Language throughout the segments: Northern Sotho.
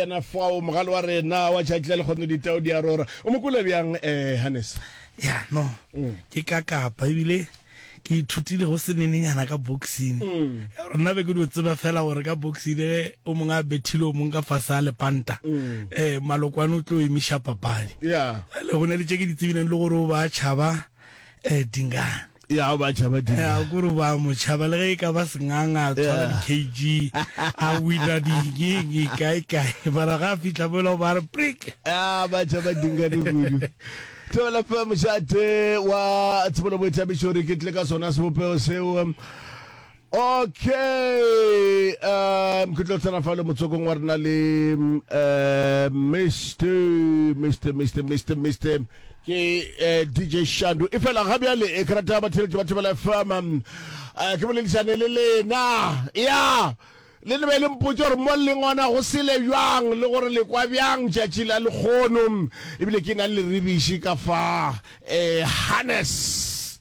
Yena fao, mogale wa rena wa tšatši la lekgono, ditau di a rora. O mo kwele bjang, eh, Hannes? Ya, no. Ke ka kapa, ebile ke ithutile go se nenenyana ka boxing. Rena be ke dio tseba fela gore ka boxing le ge o mongwe a bethile o mongwe ka fase a lepanta, eh, Malokwane o tlo emiša papadi. Ya. Bjale go na le tše ke di tsebileng le gore o ba tšhaba, eh, Dingane. ya ba tšhaba di ya gore ba mo tšhaba le ge e ka ba senganga a tshwara di kg a wina dingeng e kae kae bara ga a fitlha mola ba re prick ya ba tšhaba dinga di kudu tebela fa mošate wa tshebolo boithabišo re ke tle ka sona sebopego seo Ok, um, ke tlo tsena fa le motsokong wa rena le um, Mister, Mister, Mister, Mister, Mister, ke uh, DJ Shandu. E fela ga bjale e ke rata batheletši ba Thobela FM. Um, uh, ke boledišane le lena. Ya, le ne be le mpotse gore mo leng ona go sele bjang le gore le kwa bjang tšatši la lekgono. Ebile ke na le rebiši ka fa eh, harness.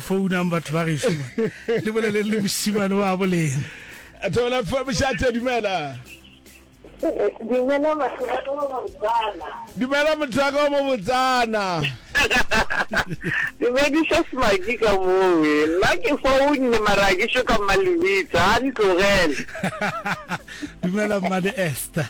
Founang batho ba gešo man, le boleleng le mošimane wa bo lena. Theola fa mošate, dumela. Dumela batho ba ka mo Botswana. Dumela motho wa ka wa mo Botswana. Dumediša Smaki ka mowe. Nna ke founne mara ha ke šo ka mma Lebitso, a ntlogele. Dumela mmane Esther.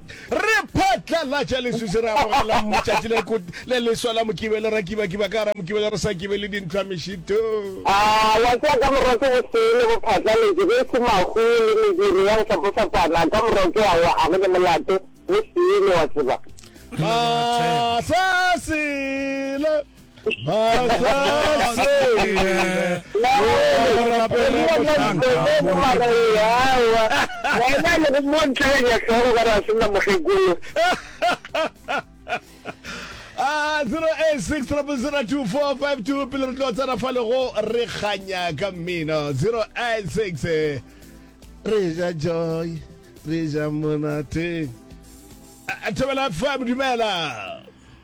Re phatlalatša leswiswi, re amogela letšatši le ko- le leswa la Mokibelo, ra kibakiba ka gara Mokibelo, re sa kibe le dintlhwa mešito. A wa tseba ka morwa ke bosee le bophatlaletši, ge e se mahu le mediro ya go fapafapana, ka morwa ke awa, a go ne molato, bosee le wa tseba. Masasela. a 0860002452 pele re tlo tsena fa lego re kganya ka mmino 086 re ja joy re ja monate A- a thobela fm dumela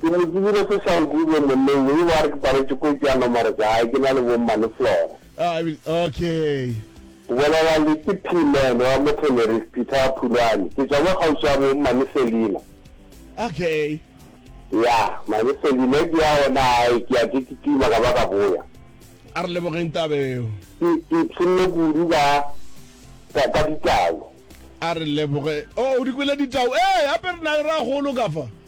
Ke mo tsebile ko Sankube monneng yo, ewa re ke paletše ko ke ya nomoro tša gae, ke na le bo mmane Flora. I mean, okay. O bolela le ke P man wa Mothoneri's Peter wa Phulwane, ke tšwa mo kgauswi ya bo mmane Selina. Okay. Ya, mane Selina ke ya gona gae, ke ya ke kitima ka ba ka boya. A re lebogeng taba eo. Ke, ke ipshinne kudu ka, ka, ka ditau. A re leboge, oh o di kwele ditau, ee gape re na le ragolo ka fa.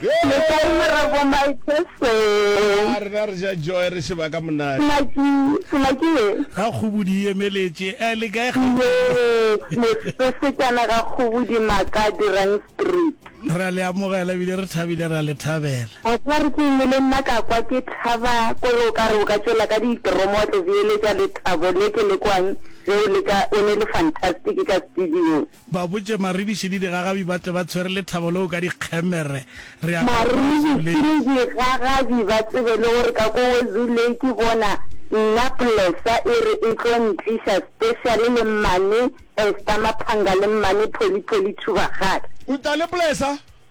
Le kae Morra Bomaitse Seng? A rena re ja joy re šeba ka monate. Sengwaki, Sengwaki ye. Ga Kgobodi e emeletše. A le kae Gauteng? Yes, Mosesejana ga Kgobodi Maka Dirang Street. Re a le amogela ebile re thabile re a le thabela. A tla re ke eng le nna ka kwa ke thaba kore o ka re o ka tšwela ka ditromo wa tlo beeletša lethabo le ke le kwang ge o leka o ne le fantastic ka studiong. Ba botše Maribiši le digagabi ba tle ba tshwere lethabo leo ka dikgemere. Re a ka kwa Wazoo Maribiši le Lake. digagabi ba tsebe le gore ka kwa Wazoo Lake bona nna Plesa e re e tlo ntliša special le Mmane Esther Maphanga le Mmane Pholi Pholi Thubagale. Utlwa le Plesa